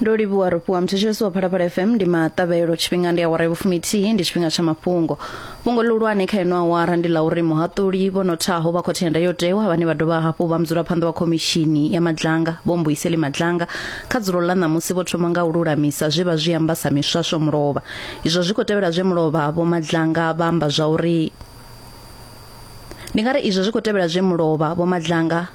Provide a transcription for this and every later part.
ndo livhuwa ro fhiwa muthetshelesi wa phalaphala fm ndi maṱavhelo tshifhinga ndi awara ya vhufumithihi ndi tshifhinga tsha mafhungo fhungo ḽihulwane kha ino awara ndi ḽa uri muhaṱuli vho nothaho vha khothe ya ndayotewa vhane vha dovha hafhu vha mudzulaphanḓa wa khomishini ya madlanga vho mbuiseli madlanga kha dzulo ḽa ṋamusi vho thoma nga u lulamisa zwe vha zwi amba sa miswaswo mulovha izwo zwi khou tevhela zwe mulovha vho madlanga vha amba zwa uri ndi nga ri izwo zwi khou tevhela zwe mulovha vho madlanga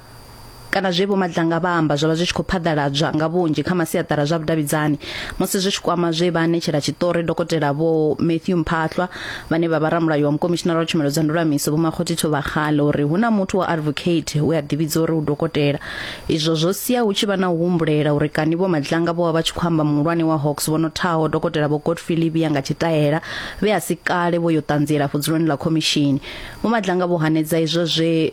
kana zwe vho Madlanga vha amba zwo vha zwi tshi khou phaḓaladzwa nga vhunzhi kha masiaṱara zwa vhudavhidzani musi zwi tshi kwama zwe vha anetshela tshiṱori dokotela vho Matthew Mphahlwa vhane vha vha ramulayo wa mukomishinara wa tshumelo dza ndulamiso vho Makgothi Thobagale uri hu na muthu wa advocate we a ḓivhidza uri u dokotela izwo zwo sia hu tshi vha na u humbulela uri kani vho Madlanga vho vha vha tshi khou amba muhulwane wa Hawks vho no thaho dokotela vho Godfrey Livia nga tshitaela vhe a si kale vho yo ṱanziela fudzuloni ḽa khomishini vho Madlanga vho hanedza izwo zwe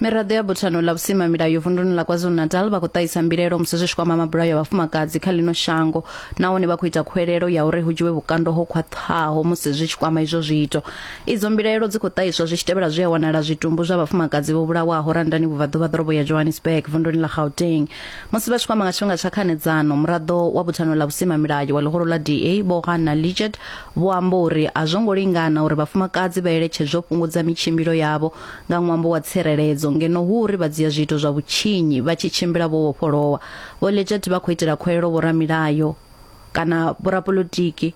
miraḓo ya buthano ḽa vhusimamilayo vunduni ḽa kwazulu-natal vha khou ṱahisa mbilaelo musi zwi tshi kwama mabulayo a vhafumakadzi kha ḽino shango nahone vha khou ita khuwelelo ya uri hu dzhiwe vhukando ho khwaṱhaho musi zwi tshi kwama izwo zwiito idzo mbilaelo dzi khou ṱahiswa zwi tshi tevhela zwi a wanala zwitumbu zwa vhafumakadzi vho vhulawaho randani vhubvaḓuvha ḓorobo ya johannesburg vunduni ḽa gauteng musi vha tshi kwama nga tshifhinga tsha khanedzano muraḓo wa buthano ḽa vhusimamilayo wa ḽihoro ḽa da vho hanna lichet vho amba uri a zwo ngo lingana uri vhafumakadzi vha eletshedzwe u fhungudza mitshimbilo yavho nga ṅwambo wa tsireledzo, ngeno hu uri vha dzhia zwiito zwa vhutshinyi vha tshi tshimbila vho vhofholowa. Vho Leggett vha khou itela khuwelelo vhoramilayo kana vhorapolotiki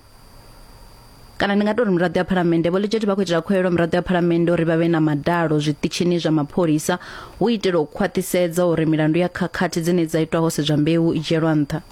kana ndi nga tou ri miraḓo ya phalamennde vho Leggett vha khou itela khuwelelo miraḓo ya phalamennde uri vha vhe na madalo zwiṱitshini zwa mapholisa hu itela u khwaṱhisedza uri milandu ya khakhathi dzine dza itwa ho sedzwa mbeu i dzhielwa nṱha.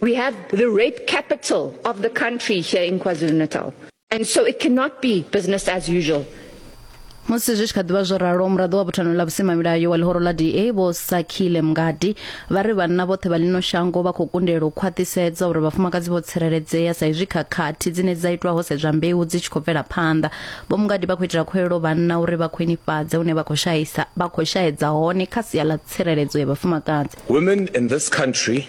We have the rape capital of the country here in KwaZulu-Natal. And so it cannot be business as usual. musi zwi tshi kha ḓivha zwo ralo muraḓo wa buthano ḽa vhusimamilayo wa ḽihoro ḽa da vho sakhile mngadi vha ri vhanna vhoṱhe vha ḽino shango vha khou kundelwa u khwaṱhisedza uri vhafumakadzi vho tsireledzea sa izwi khakhathi dzine dza itwa ho sedzwa mbeu dzi tshi khou bvela phanḓa vho mngadi vha khou itela khuelo vhanna uri vha khwinifhadze hune vha khou shaisa vha khou shaedza hone kha sia ḽa tsireledzo ya vhafumakadzi women in this country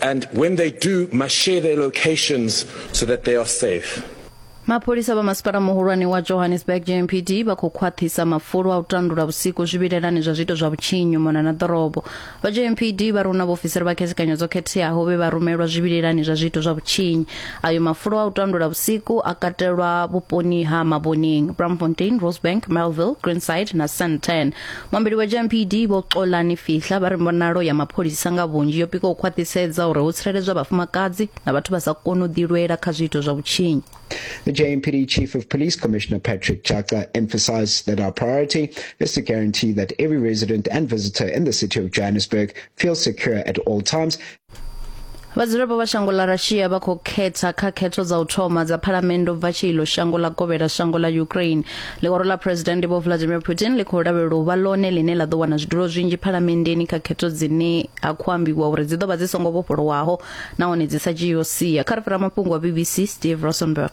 And when they do, must share their locations so that they are safe. mapholisa vha masipala muhulwane wa johannesburg jmpd vha khou khwaṱhisa mafulo a u tandula vhusiku zwivhilelani zwa zwiito zwa vhutshinyi mona na ḓorobo vha jmpd vha runa vhaofisiri vha khethekanyo dzo khetheaho vhe vha rumelwa zwivhilelani zwa zwiito zwa vhutshinyi ayo mafulo a u tandula vhusiku a katelwa vhuponi ha maboneng bramfontein rosebank melville greenside na santan muambeli wa gmpd vho xolani fihla vha ri mbonalo ya mapholisa nga vhunzhi yo pika u khwaṱhisedza uri ho tsireledzwa vhafumakadzi na vhathu vha sa koni u ḓilwela kha zwiito zwa vhutshinyi The JMPD Chief of Police Commissioner Patrick Chaka emphasized that our priority is to guarantee that every resident and visitor in the city of Johannesburg feels secure at all times vhadzulapo vha shango ḽa russia vha khou khetha kha khetho dza u thoma dza phalamennde u bva tshi iḽo shango ḽa kovhela shango ḽa ukraine ḽihoro ḽa phuresidennde vho vladimir putin ḽi khou lavhelelwa u vha ḽone ḽine ḽa ḓo wana zwidulo zwinzhi phalamenndeni kha khetho dzine ha khou ambiwa uri dzi ḓo vha dzi songo vhofholowaho nahone dzi sa dzhiiho sia kha ri fhira mafhungo a bbc steve rosenberg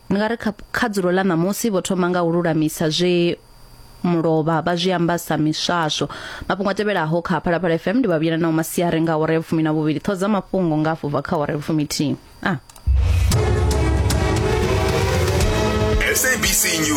ndi nga ri kha, kha dzulo ḽa ṋamusi vho thoma nga u lulamisa zwe mulovha vha zwi amba sa miswaswo mafhungo a tevhelaho kha phalaphala fm ndi vhavhuyela nao masiari nga awara ya vhufumi na vhuvhili ṱhodza mafhungo nga afho bva kha awara ya vhufumi thihi a ah. SABC News.